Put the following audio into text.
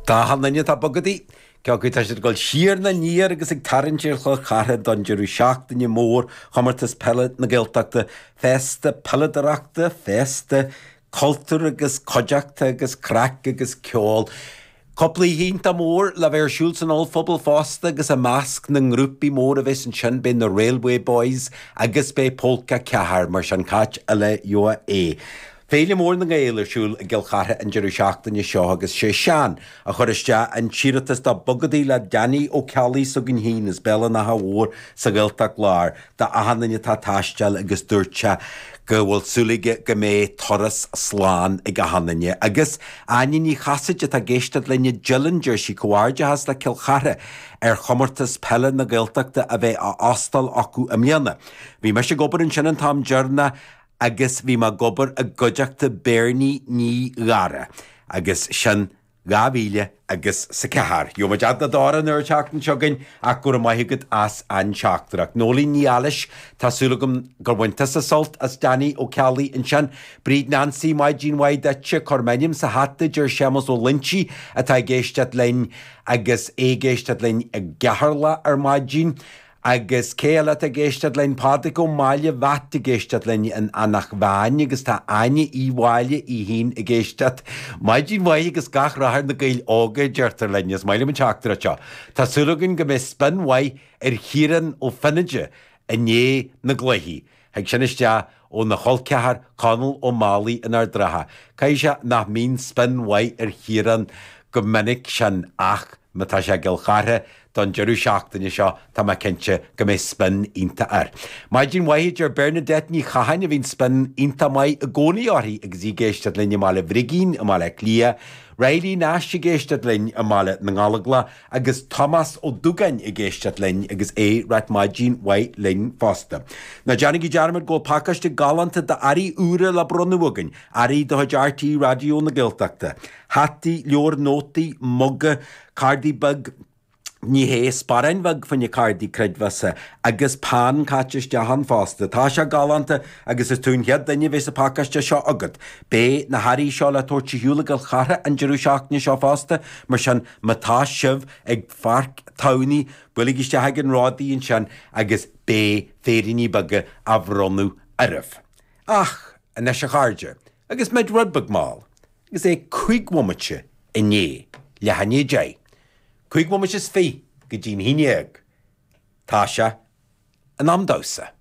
D'achan duine atá ag bogadaí, cé acu tá siad ag dul siar nó aniar agus ag tarraingt ar Chill Chartha don deireadh seachtaine mór Chomórtas Peile na Gaeltachta, féasta peileadóireachta, féasta Cultúr agus cuideachta agus craic agus ceoil. Cúpla oíche iontach mór le bheith ar siúl san ollphuball fosta agus i measc na ngrúpaí mór a bheas ansin beidh na Railway Boys agus beidh Pólca 4, mar sin cad eile uait. Féile mhór na nGael ar siúl i gCill Chartha an deireadh seachtaine seo agus sé Seán a chuir isteach an t-iarratas do Bogadaí le Danny Ó Ceallaigh s'againn féin as Béal an Átha Mhóir sa Ghaeltacht Láir. D'achan duine atá ag taisteáil agus dúirt sé go bhfuil súil aige go mbeidh turas slán ag achan duine. Agus Áine Ní Chasaide atá ag éisteacht linn i Dillon, deir sí, Comhghairdeachas le Cill Chartha ar Chomórtas Peile na Gaeltachta a bheith á óstáil acu i mbliana. Bhí mise ag obair ansin an t-am deireanach agus bhí mé ag obair i gcuideachta Beirní Ní Ghadhra agus sin 2000 agus a ceathair. Gheobhaimid eagla dár an oiread teacht anseo againn ach go raibh maith agat as an teachtaireacht. Nóilín Ní Eilís, tá súil agam gur bhain tusa sult as Danny Ó Ceallaigh ansin. Bríd Nancy, maidin mhaith duitse. Cuir m'ainm sa hata a deir Séamus Ó Loinsigh atá ag éisteacht linn agus é ag éisteacht linn i gCeatharlach ar maidin. Agus cé eile atá ag éisteacht linn? Pádraig Ó Máille Mheait ag éisteacht linn in Anach Mheáin agus tá Áine Uí Mháille í fhéin ag éisteacht. Maidin mhaith agus gach rath ar na Gaeil Óga a deirtear linn. Is maith liom an teachtaireacht seo. Tá súil againn go mbeidh spion mhaith ar Chiarán Ó Feinneadha i ndiaidh na gcluichí. Thig sin isteach óna cholceathar Conall Ó Málaí in Ard an Rátha. Caithfidh sé nach mbíonn spion mhaith ar Chiarán go minic sin ach má tá sé i gCill Chartha don deireadh seachtaine seo tá mé cinnte go mbeidh spion iontach air. Maidin mhaith, a deir Bernadette Ní Chatháin a bhíonn spion iontach maith i gcónaí uirthi agus í ag éisteacht linn i mBaile Brigín i mBaile Átha Cliath, Riley Nash ag éisteacht linn i mBaile na nGallóglach, Agus Tomás Ó Dúgáin ag éisteacht linn agus é ag ráit maidin mhaith linn fosta. Ná déanaigí dearmad go bhfuil pacáiste galánta d'earraí úra le bronnadh againn, earraí de chuid RTÉ Raidió na Gaeltachta. Hataí, leabhair nótaí, muga, cárdaí beag, ní hé, sparáin bheag fá choinne cárdaí creidmheasa, agus peann caite isteach ann fosta. Tá sé galánta agus is tú an chéad duine a bheas an pacáiste seo agat. Beidh na hearraí seo le tabhairt ar shiúl i gCill Chartha an deireadh seachtaine seo fosta, mar sin Má tá sibh ag Páirc Tamhnaigh, buailigh isteach chuig an Rodaí ansin agus beidh féiríní beaga á bhronnadh oraibh. Ach anois, a chairde, agus muid rud beag mall, agus é cúig bhomaite i ndiaidh leath i ndiaidh a deich, cúig bhomaite is fiche go dtí'n haon déag, tá sé in am domhsa.